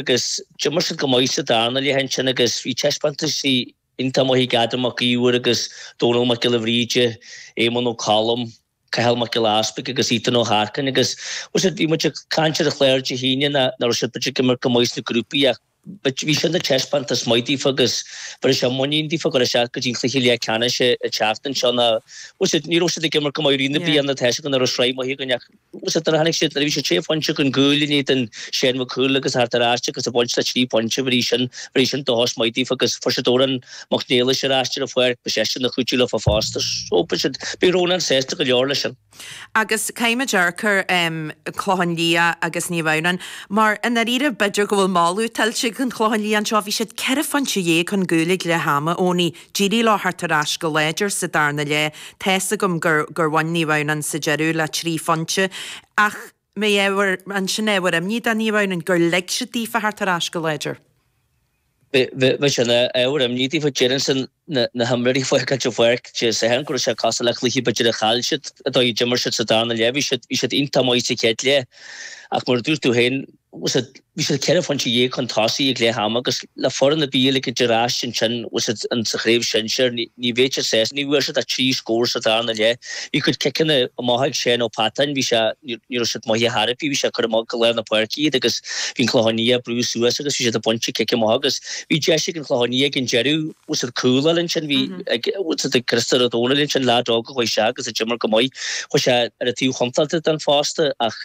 agus d'imir siad go maith sa darna leath ansin agus bhí taispeántas iontach maith ag Adam Mac Iomhair agus Dónal Mac Giolla Bhríde, Éamonn Ó Colm, Cathal Mac Giolla Easpaig agus Ethan Ó hEarcáin agus bhí muid ag caint ar an chlár Dé hAoine nach raibh siad b'fhéidir ag imirt go maith sna grúpaí ach bhí sin ina thaispeántas maith díofa agus bhéarfaidh sé muinín díofa go raibh sé go dtí cluiche leathcheannais an tseachtain seo nó ní raibh siad ag imirt go maith i rith na bliana tá's agam go raibh sraith maith againn ach Agus nuair a tháinig siad, nuair a bhí siad sé phointe chun cúil in éadan Seán Mac Cumhaill agus a theacht ar ais agus a bhaint le trí phointe, bhí sin, bhí sin ina thús maith díofa agus fuair siad Odhrán Mac Niallais ar ais ar an pháirc, beidh seisean ina chuidiú leofa fosta. So, bhí siad, bhí Rónán sásta go leor leis sin. Agus caithfimid dearcadh ar an Chlochán Liath agus Naomh Adhamhnáin, mar i ndáiríre, b'fhéidir go bhfuil moladh tuillte ag an Chlochán Liath anseo, bhí siad ceithre phointe dhéag chun cúil ag leath ama, Eoiní, D'éirigh leo theacht ar ais go láidir sa darna leath. Tá's agam gur gur bhain Naomh Adhamhnáin sa deireadh le trí phointe ach an mbeadh ábhar an sin ábhar imní do Naomh Adhamhnáin gur lig siad daofa theacht ar ais go láidir? Bhí sé ina ábhar imní daofa déarfainnse na himreoirí ag fágáilt an pháirc Dé Sathairn go raibh sé cosúil le cluiche b'fhéidir a chaill siad, an dóigh a d'imir siad sa darna leath. Bhí siad bhí siad iontach maith sa chéad leath ach mar a dúirt tú féin, bhí siad ceithre phointe dhéag chun tosaigh ag leath ama agus le foireann a bheadh ag dul ar ais ansin sa Chraobh Shinsir, ní bheidh sé sásta. Ní bhfuair siad ach trí scór sa darna leath. Bhí a gcuid ciceanna amach ag Seán Ó Peatáin, bhí sé, ní raibh siad imeartha thar a bhí sé ag cur amach go lár na páirce iad agus bhí an Clochán Liath ag brú suas agus bhí siad ag baint an cic amach agus bhí deis ag an Chlochán Liath ag an deireadh cúl a fháil ansin, bhí ag Christopher Ó Domhnaill ansin, leaid óg a chuaigh isteach agus a d'imir go maith, chuaigh sé ar an taobh chontáilte den phosta ach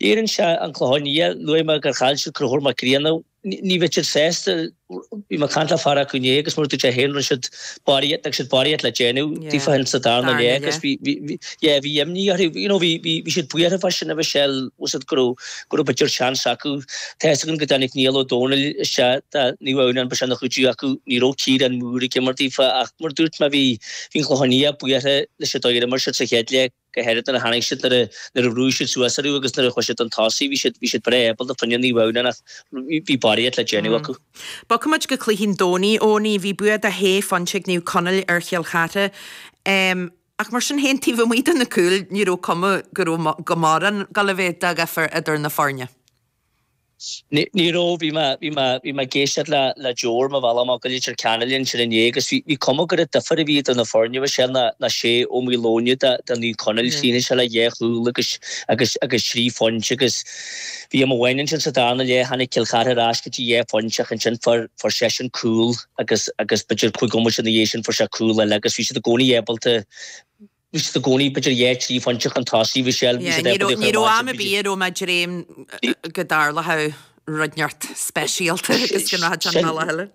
Léiríonn sé an Clochán Liath, luaigh mé gur chaill siad Conchúr Mac Grianna, ní bheidh siad sásta, bhí mé ag caint le fear acu inné agus mar a dúirt sé féin rinne siad barraíocht, d'fhág siad barraíocht le déanamh daofa féin sa darna leath agus bhí, yeah, bhí imní orthu, you know, bhí, bhí, bhí siad buartha fá sin a Mhichelle, mheas siad go raibh, go raibh b'fhéidir seans acu, tá fhios agam go dtáinig Niall Ó Dónaill isteach, do Naomh Adhamhnáin bhí sin ina chuidiú acu, ní raibh Ciarán Moore ag imirt daofa ach mar a dúirt mé bhí, bhí an Clochán Liath buartha leis an dóigh ar imir siad sa chéad leath. go háirid nuair a tháinig siad, nuair a bhrúigh siad suas orthu agus nuair a chuaigh siad chun tosaigh, bhí siad, bhí siad breá ábalta fá choinne Naomh Adhamhnáin ach bhí barraíocht le déanamh acu. Bogfaidh muid go cluichí an Domhnaigh, Eoiní. Bhí bua de shé phointe ag Naomh Conaill ar Chill Chartha ach mar sin féin, taobh amuigh de na cúil, ní raibh cuma go raibh go mórán ag dul a bheith de dhifear idir na foirne. Ní raibh. Bhí mé, bhí mé, bhí mé ag éisteacht le, le Joe ar mo bhealach amach go Leitir Ceanainn ansin inné agus bhí, bhí cuma gur an difear a bhí idir na foirne bhí sé ná, ná Shea Ó Maoileoin de, de Naomh Conaill, chríochnaigh sé le dhá chúl agus, agus, agus trí phointe agus bhí am amháin ansin sa darna leath tháinig Cill Chartha ar ais go dtí dhá phointe ach ansin fuair, fuair seisean cúl agus, agus b'fhéidir cúig bhomaite ina dhiaidh sin fuair sé cúl eile agus bhí siad i gcónaí ábalta Bhí siad i gcónaí b'fhéidir dhá trí phointe chun tosaigh Michelle is Ní raibh am ar bith a raibh mé ag dréim go dtarlódh rud inteacht speisialta agus go mbrathfad an mile eile.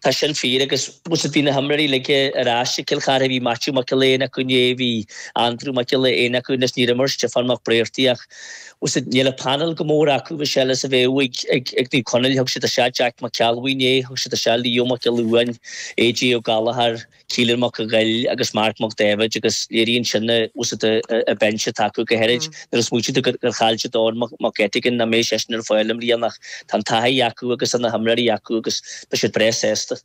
Tá sin fíor agus tá a fhios agat bhí na himreoirí uilig ar ais ag Cill Charthaigh. Bhí Maitiú Mac Giolla Éin acu inné, bhí Aindriú Mac Giolla Éin acu anois, níor imir Stiofán Mac Briartaigh ach tá a fhios agat níl an painéal chomh mór acu Michelle is a bheadh ag ag Naomh Conaill. Thug siad isteach Jeaic Mac Ceallbhuí inné, thug siad isteach Leo Mac Giolla Uain, AJ Ó Gallchóir, Keelan Mac an Ghoill agus Mark Mac Daibhéid agus léiríonn sin tá a fhios agat an binse atá acu go háirid. Nuair a smaoitíonn tú gur chaill siad Eoghan Mag Eiteagáin nach mbeidh seisean ar fáil i mbliana ach tá an taithí acu agus tá na himreoirí acu agus beidh siad breá sásta.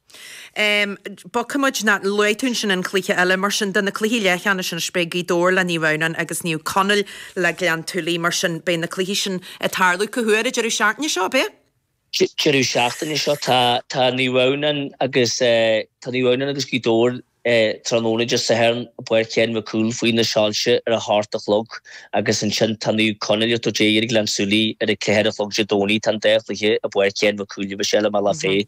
Bogfaidh muid nó luaigh tú ansin an cluiche eile mar sin de na cluichí leathcheannais anois beidh Gaoth Dobhair le Naomh Adhamhnáin agus Naomh Conaill le Gleann tSúilí mar sin beidh na cluichí sin ag tarlú cá huair an deireadh seachtaine seo, beidh? deireadh seachtaine seo tá Naomh Adhamhnáin agus tá Naomh Adhamhnáin agus Gaoth Dobhair tráthnóna Dé Sathairn i bPáirc Sheáin Mhic Cumhaill faoi na soilse ar a hocht a chlog agus ansin tá Naomh Conaill agus Dé Eiric Gleann tSúilí ar a ceathair a chlog Dé Domhnaigh tá an dá chluiche i bPáirc Sheáin Mhic Cumhaill agus i mBealach Féich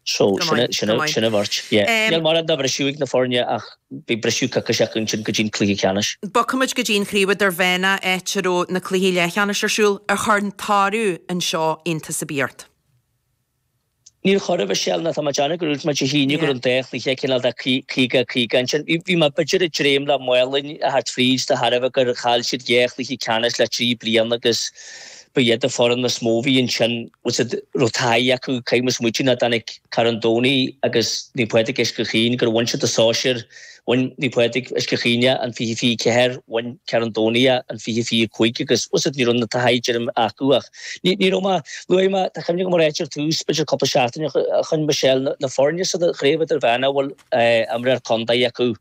so sin sin sin a bheirt yeah níl mórán de bhriseadh ag na foirne ach Beidh briseadh coicíse acu ansin go dtí an cluiche ceannais. Bogfaimid go dtí an Chraobh Idirmheánach áit a raibh na cluichí leathcheannais ar siúl. Ar chuir an toradh anseo iontas ar bith ort? Níor chuir, a Mhichelle, nó tá mé ag déanamh gur dhúirt mé Dé hAoine go raibh an dá chluiche cineál de 50-50 ansin. Bhí mé b'fhéidir ag dréim le Málainn a theacht fríd de thairbhe gur chaill siad dhá chluiche ceannais le trí bliana agus, Ba iad an fhoireann is mó a bhí ansin, tá a fhios agat, a raibh taithí acu, caithfidh muid smaoitiú go dtáinig Carn Domhnaigh agus Naomh Pádraig Uisce Chaoin, gur bhain siad an sóisear, bhain Naomh Pádraig Uisce Chaoin é, an 20-24, bhain Carn Domhnaigh é, an 20-25, agus, tá a fhios agat, ní raibh an taithí dar liom acu ach ní, ní raibh mé, luaigh mé, tá cuimhne agam a ráit ar tús, b'fhéidir cúpla seachtain ó shin Michelle na foirne sa chraobh idirmheánach a bhfuil, eh, imreoir contae acu.